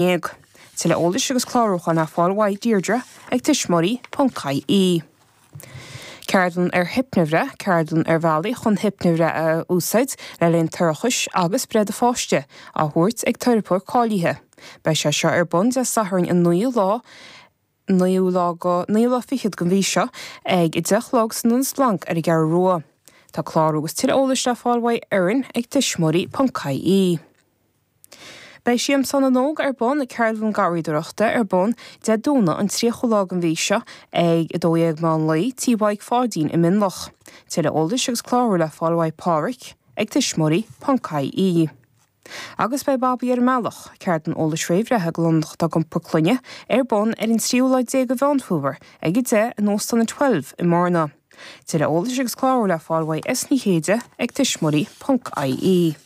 dhéag. Tuilleadh eolais agus clárúcháin ar fáil uaidh Deirdre ag tuismitheoirí.ie. Ceardlann ar Hiopnabhreith, Ceardlann ar bhealaí chun hiopnabhreith a úsáid le linn toirchis agus breith do pháiste, á thabhairt ag teiripeoir cáilíthe. Beidh sé seo ar bun Dé Sathairn an 9ú lá, nó an 9ú lá fichead den mhí seo ag 10 a chlog san Ionad Splanc ar an gCeathrú Rua. Tá clárú agus tuilleadh eolais le fáil uaidh Erin ag tuismitheoirí ponc ie. Beidh Siamsán na nÓg ar bun ag Ceardlann Garraíodóireachta ar bun Dé Domhnaigh an 30ú lá den mhí seo ag 12 meán lae tí Mhaidhc Pháidín i Mionlach. Tuilleadh eolais agus clárú le fáil uaidh Pádraic ag tuismitheoirí ponc ie. Agus beidh Babaí ar an mBealach, ceardlann eolais réamhbhreithe do lánúineacha atá ag iompar clainne, ar bun ar an tríú lá déag de Mheán Fómhair, ag 10:00, in Óstán an Twelve i mBearna. Tuilleadh eolais agus clárú le fáil uaidh S. Ní Chéide ag tuismitheoirí ponc IE.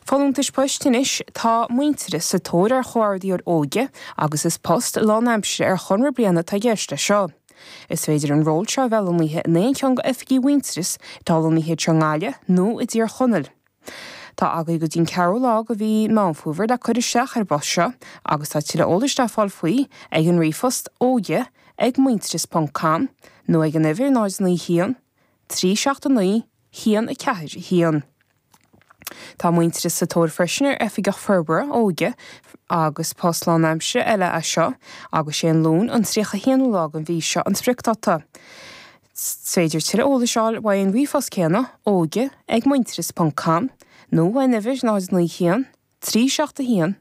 Folúntais Poist Anois tá Muintearas sa tóir ar Chomhordaitheoir Óige agus is post lánaimseartha ar chonradh bliana atá i gceist leis seo. Is féidir an ról seo a bheith lonnaithe in aon cheann d'oifigí Mhuintearas atá lonnaithe thart i nGaillimh nó i dTír Chonaill. Tá agaí go dtí'n 4ú lá go mhí Meán Fómhair le cur isteach ar an bpost seo agus tá tuilleadh eolais le fáil faoi ag an ríomhphost óige ag muintearas ponc com nó ag an uimhir 091 379 141. Tá Muintearas sa tóir freisin ar Oifigeach Forbartha Óige agus post lánaimseartha eile é seo agus 'sé an Luan an 31ú lá den mhí seo an spriocdáta. Is féidir tuilleadh eolais a fháil uaidh an ríomhphost céanna, óige ag muintearas ponc com, nó ar an uimhir 091 371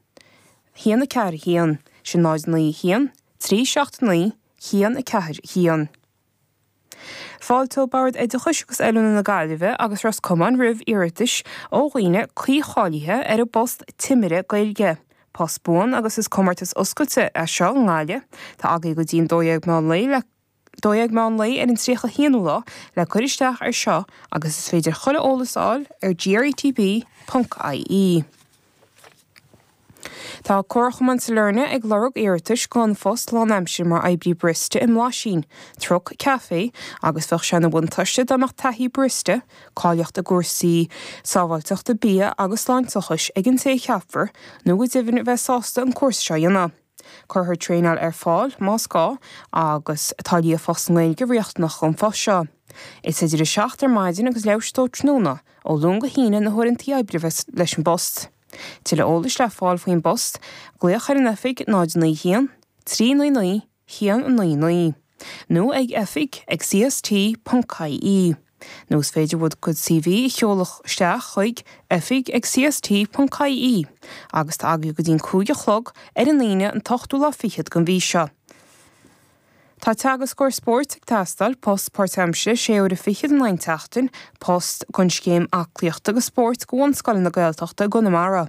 141, sin 091 379 141. Fáilteoidh Bord Oideachais agus Oiliúna na Gaillimhe agus Ros Comáin roimh iarratais ó dhaoine cuícháilithe ar an bpost Timire Gaeilge. Post buan agus is comórtas oscailte é seo i nGaillimh. Tá agaí go dtí'n dó dhéag meán lae le. 12:00 meán lae ar an 31ú lá le cur isteach ar seo agus is féidir chuile eolas a fháil ar GRETB.ie. Tá Comharchumann Sailearna ag lorg iarratais don phost lánaimsire mar oibrí barista i mBlaisín, truck café agus bheadh sé ina bhuntáiste dá mbeadh taithí barista, cáilíocht i gcúrsaí sábháilteachta bia agus sláinteachais ag an té a cheapfar nó go deimhin bheith sásta an cúrsa seo a dhéanamh. Cuirfear traenáil ar fáil, más gá, agus tá líofacht sa nGaeilge riachtanach don phost seo. Is idir 7 ar maidin agus leathuair tar éis 2 tráthnóna, ó Luan go hAoine, na huaireantaí oibre a bheas leis an bpost. Tuilleadh eolais le fáil faoin bpost, glaoch ar an oifig 091 399 199 nó ag oifig ag cst.ie. Nó is féidir bhur gcuid CV a sheoladh isteach chuig, oifig ag CST.ie, agus tá agaibh go dtí an cúig a chlog ar an Aoine an t-ochtú lá fichead den mhí seo. Tá Teagascóir Spóirt ag teastáil, post páirtaimsire, sé uaire fichead in aghaidh an tseachtain, post don scéim aclaíochta agus spóirt do bhunscoileanna Gaeltachta i gConamara.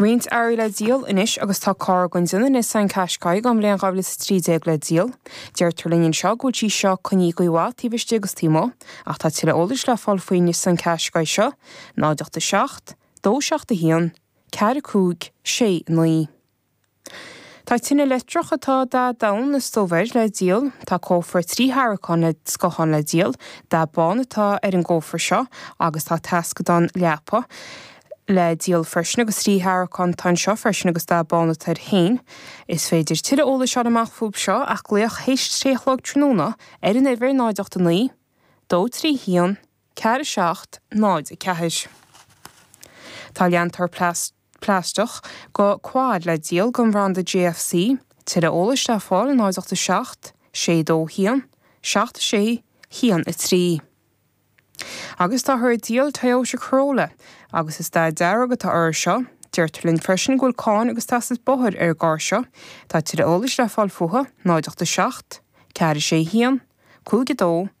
roinnt earraí le díol anois agus tá carr den déanamh Nissan Qashqai den bhliain 2013 le díol. Deirtear linn anseo go bhfuil sí seo coinnithe i gcaoi mhaith taobh istigh agus taobh amuigh, ach tá tuilleadh eolais le fáil faoin Nissan Qashqai seo, 087 271 456 9. Tá tine leictreach atá dath donn is dubh air le díol. Tá cófra trí tharraiceán le scáthán le díol. Dath bán atá ar an gcófra seo agus tá taisceadán leapa le díol freisin agus trí tharraiceán atá anseo freisin agus dath bán atá air féin. Is féidir tuilleadh eolais a fháil amach fúthu seo ach glaoch théis a trí a chlog tráthnóna ar an uimhir 0 8 9 2 3 1 4 7 0 4. Tá leantóir plaisteach. plaisteach do quad le díol den bhranda JFC, Tuilleadh eolais le fáil 087 621 761 3. Agus táthar ag díol Toyota Corolla agus is dath dearg atá uirthi seo. Deirtear linn freisin go bhfuil cáin agus teastas bóthair ar an gcarr seo. Tá tuilleadh eolais le fáil fúithi 087 461 52 3.